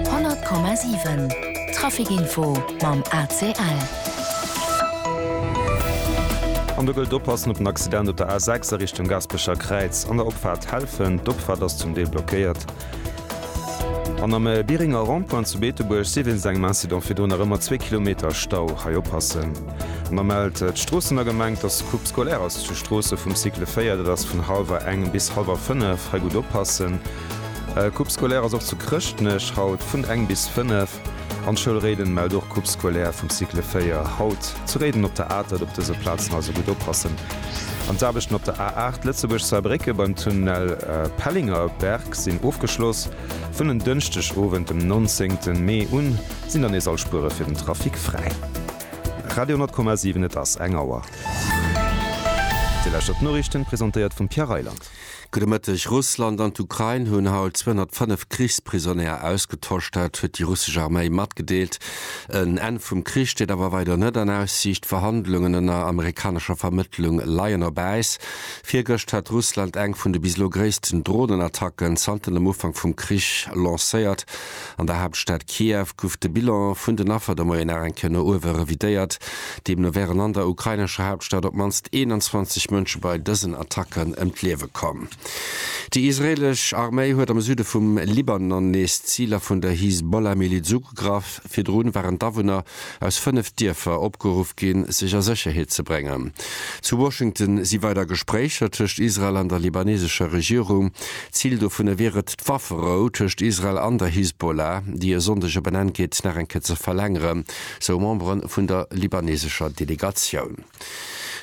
100,7 Trafic-Info mam ACL. An do gëllt oppassen op den Accident op der A6 a Richtung Gaasperecher Kräiz an der Opfaart Helfen. D'Opfaart ass zum Deel blockéiert. An am Biringer Rond-point zu Beetebuerg si wéinst engem Incident virdrun nach ëmmer zwee Kilometer Stau. Hei oppassen. An da mellt d'Stroossener Gemeng, dass Coupe scolaire ass zu Stroossen vum Cycle 4. Dat ass vun hallwer eng bis hallwer fënnef. Hei gutt oppassen. E Coupe scolaire ass och zu Chrëschtnech haut vun eng bis fënnef an d'Schoul Réiden mellt och Coupe scolaire vum Cycle 4 haut zu Réiden op der Atert. Op dëse Plazen also gutt oppassen an d'Aarbechten op der A8 Lëtzebuerg-Saarbrécke beim Tunnel Pellinger-Berg sinn ofgeschloss. Vun en Dënschdeg Owend dem 19 Mee un sinn dann nees all Spuere fir den Trafic fräi. Radio 10,7 Et ass eng Auer. Déi lescht op d'Noriichten, presentéiert vum Pierre Reyland. Gudde Mëtteg. Russland an d'Ukrain hunn haut 205 Krichsprisonnéier ausgetosch. Dat huet déi russesch Arméi matgedeelt. En Enn vum Krich steet awer weider net an Aussiicht. D'Verhandlungen ënner amerikanescher Vermëttlung leien op Äis. Virgëscht hat Russland eng vun de bis elo gréissten Dronenattacken zanter dem Ufank vum Krich lancéiert. An der Haaptstad Kiew guff de Bilan vun den Affer de Moien nach eng Kéier no uewe revidéiert. Deemno wären an der ukrainescher Haaptstad op d'mannst 21 Mënsche bei dësen Attacken ëm d'Liewe komm. Déi israeelesch Arméi huet am Süde vum Libanon nees Ziler vun der Hisbollah-Miliz ugegraff. Virdru waren d'Awunner aus fënnef Dierfer opgeruff ginn, sech a Sécherheet ze bréngen. Zu Washington si weider Gespréicher tëscht Israel an der libanesescher Regierung. Zil dovunner wier et, d'Wafferou tëscht Israel an der Hisbollah, déi e Sonndeg op en Enn geet, nach eng Kéier ze verlängeren, sou Membere vun der libanesescher Delegatioun.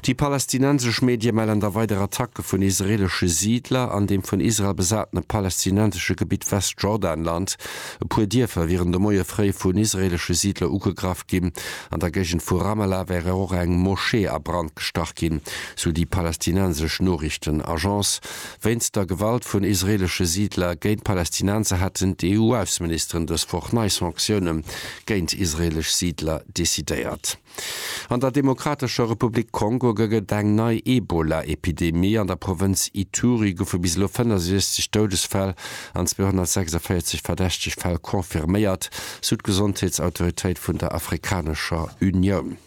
Déi palästinensesch Medie mellen da weider Attacke vun israeelesche Siidler an deem vun Israel besatene palästinensesche Gebitt Westjordanland. E puer Dierfer wieren de Moie fréi vun israeelesche Siidler ugegraff ginn. An der Géigend vu Ramallah wär och eng Moschee a Brand gestach ginn, sou déi palästinensesch Noriichtenagence. Wéinst der Gewalt vun israeelesche Siidler géint d'Palästinenser haten d'EU-Ausseministeren dës Woch nei Sanktioune géint israeelesch Siidler decidéiert. An der Demokratescher Republik Kongo gëgg et eng nei Ebola-Epidemie. An der Provënz Ituri goufe bis elo 65 Doudesfäll an 246 verdächteg Fäll confirméiert, sou d'Gesondheetsautoritéit vun der Afrikanescher Unioun.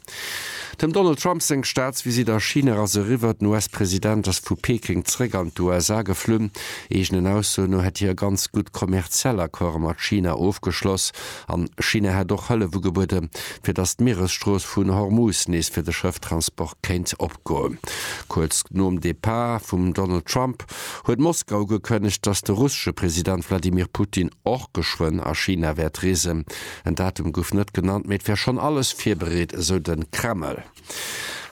Dem Donald Trump seng Staatsvisitt a China ass eriwwer. Den US-President ass vu Peking zeréck an d'USA geflunn. Eegenen Aussoen no hätt hie ganz gutt kommerziell Accorde mat China ofgeschloss. An China hätt och Hëllef ugebuede fir datt d'Mieresstrooss vun Hormuz nees fir de Schëfftransport kéint opgoen. Kuerz nom Depart vum Donald Trump huet Moskau ugekënnegt, datt de russesche President Wladimir Putin och geschwënn a China wäert reesen. En Datum gouf net genannt, mee et wär schonn alles virbereet, esou de Kreml.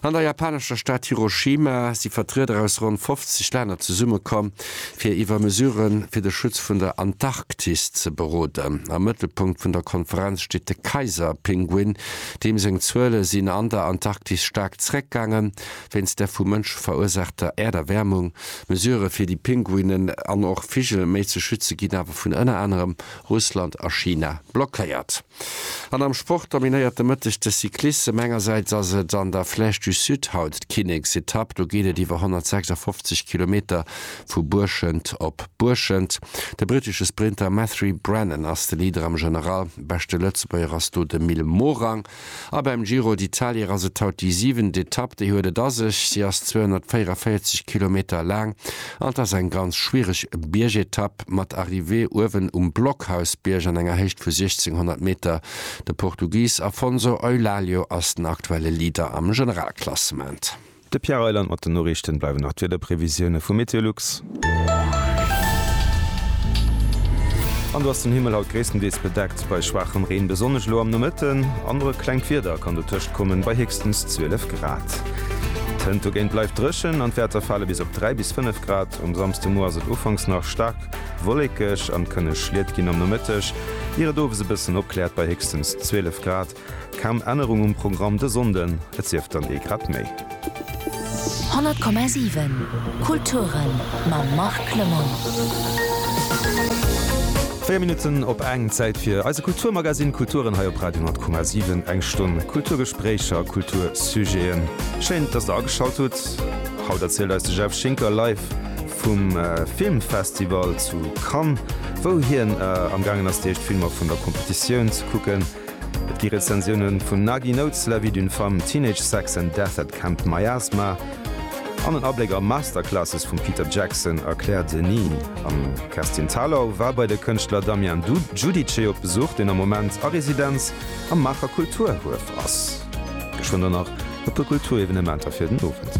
An der japanescher Stad Hiroshima si Vertrieder aus ronn 50 Länner zesummekomm, fir iwwer Mesurë fir de Schutz vun der Antarktis ze beroden. Am Mëttelpunkt vun der Konferenz steet de Kaiserpinguin, deem seng Zuele sinn an der Antarktis staark zeréckgaangen, wéinst der vu Mënsche verursaachter Äerderwäermung. Mesurë fir déi Pinguinen an och Vigel méi ze schütze ginn awer vun ënner anerem Russland a China blockéiert. An am Sport dominéiert de Mëtteg de Cyclissem. Engersäits ass et an der Flèche du Sud haut d'Kinneksetapp. Do geet et iwwer 156 Kilometer vu Buerschent op Buerschent. De brittesche Sprinter Matthery Brennan ass de Leader am General. Beschte Lëtzebuerger ass do de Mil Morang. A beim Giro d'Italier ass et haut déi siwent Etapp. Déi huet et a sech, si ass 244 Kilometer laang an 't ass eng ganz schwiereg Biergetapp mat Arrivée uewen um Blockhausbierg an enger Héicht vu 1600 Meter. De Portugis Afonso Eulálio ass den aktuelle Leader am Generalklassement. De Pierre Reyland mat den Noriichten. Bleiwen nach d'Wiederprevisioune vu Meteolux. An do ass den Himmel haut gréisstendeels bedeckt bei schwaachem Reen, besonnesch elo am Nomëtten. An och e klengt Wieder kann dotëscht kommen, bei héchstens 12 Grad. D'Hënt dogéint bleift dréchen an d'Wäerter fale bis op 3 bis 5 Grad. Um Samsdemoie ass et ufanks nach staark wolléckeg an kënne Schliet ginn am Nomëtteg, ier et owes e bëssen opkläert bei héchstens 12 Grad. Kaum Ännerung um Programm de Sonnden, et sief dann ee grad méi. 100,7 Kulturen mam Marc Clement. 4 Minutten op eng, Zäit fir eise Kulturmagazine Kulturen hei op Radio 10,7. Eng Stonn Kulturgespréicher, Kultursujeten. Schéin, dass der ageschalt hutt. Haut erzielt eis de Jeff Schinker live vum Filmfestival zu Cannes, wou hien amgaangen ass, déi éischt Filmer vun der Competitioun ze kucken. Et gi Rezensiounen vun Nagi Notes, La vie d'une femme, Teenage Sex and Death at Camp Miasma an en Abléck a Masterclasses vum Peter Jackson a Claire Denis. An d'Kerstin Thalau war bei de Kënschtler Damien Giudice op Besuch, deen am Moment a Residenz am Maacher Kulturhuef ass. Geschwënn dann nach e puer Kulturevenementer fir den Owend.